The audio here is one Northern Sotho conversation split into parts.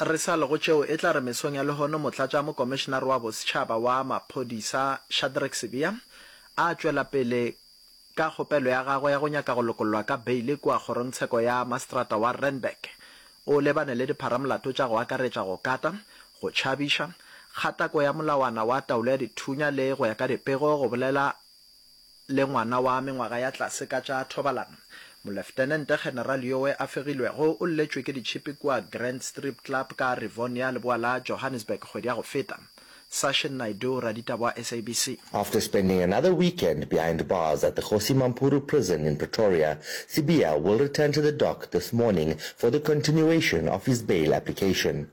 Re sa le go tšeo, e tla re mesong ya lehono Motlatša Mokomišenare wa Bosetšhaba wa Maphodisa Shadrack Sibiya a tšwela pele ka kgopelo ya gagwe ya go nyaka go lokollwa ka beile kua Kgorongtsheko ya Maseterata wa Randburg, o lebane le dipharamolato tša go akaretša go kata, go tšhabiša, kgatako ya molawana wa taolo ya dithunya le, go ya ka dipego, go bolela le ngwana wa mengwaga ya tlase ka tša thobalano. Moleftenente General yowe a fegilwego o lletšwe ke ditšhipi kua Grand Strip Club ka Rivonia leboa la Johannesburg kgwedi ya go feta. Sashin Naidoo, raditaba wa SABC. After spending another weekend behind bars at the Kgosi Mampuru Prison in Pretoria, Sibiya will return to the dock this morning for the continuation of his bail application.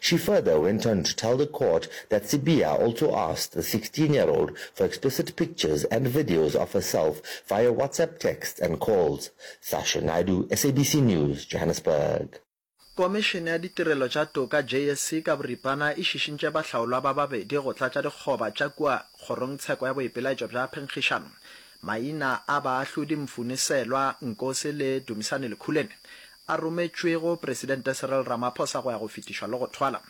She further went on to tell the court that Sibiya also asked the sixteen year old for explicit pictures and videos of herself via WhatsApp texts and calls. Sasha Naidoo, SABC News, Johannesburg. Komišene ya Ditirelo tša Toka, JSC, ka boripana e šišintše bahlaolwa ba babedi go tlatša dikgoba tša kua Kgorongtsheko ya Boipelaetšo bja Phenkgišano. Maina a baahlodi Mfuni Selwa Nkosi le Dumisani Lekhuleni a rometšwego Presidente Cyril Ramaphosa go ya go fetišwa le go thwala.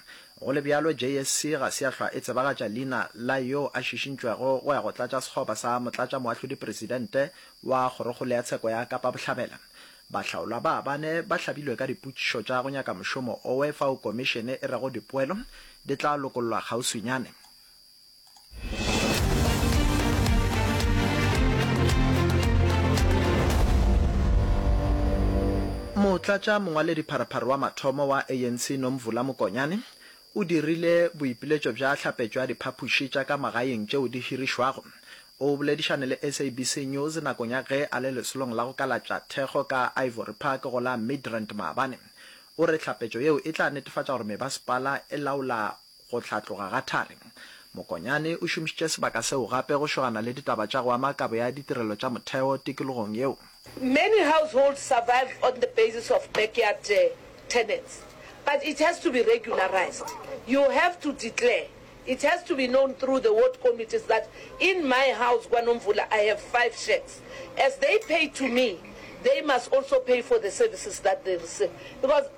Go le bjalo, JSC ga se ya hlwa e tsebagatša leina la yo a šišintšwego go ya go tlatša sekgoba sa Motlatšamoahlodi-Presidente wa Kgorokgolo ya Tsheko ya Kapa Bohlabela. Bahlaolwa ba bane ba hlabilwe ka dipotšišo tša go nyaka mošomo owe fao komišene e rego dipoelo di tla lokollwa kgauswinyane. Motlatša mongwaledipharopharo wa mathomo wa ANC Nomvula Mokonyane o dirile boipiletšo bja hlapetšo ya diphaphuši tša ka magaeng tšeo di hirišwago. O boledišane le SABC News nakong ya ge a le lesolong la go kalatša thekgo ka Ivory Park go la Midrand maabane. O re hlapetšo yeo e tla netefatša gore mebasepala e laola Go hlatloga ga thari. Mokonyane o šomišitše sebaka seo gape go šogana le ditaba tša go ama kabo ya ditirelo tša motheo tikologong yeo. Many households survive on the basis of backyard tenants but it has to be regularized, you have to declare, it has to be known through the ward committees that in my house KwaNomvula I have five shacks, as they pay to me they must also pay for the services that they receive because.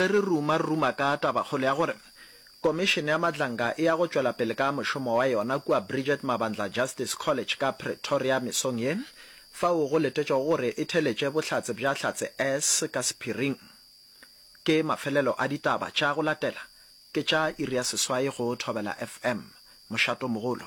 ge re ruma re ruma ka tabakgolo ya gore Komišene ya Matlanga e ya go tšwela pele ka mošomo wa yona kua Bridget Mabandla Justice College ka Pretoria mesong ye, fao go letetšwego gore e theletše bohlatse bja Hlatse S ka sephiring. Ke mafelelo a ditaba tša go latela Ke tša iri ya seswai go Thobela FM. Mošato mogolo.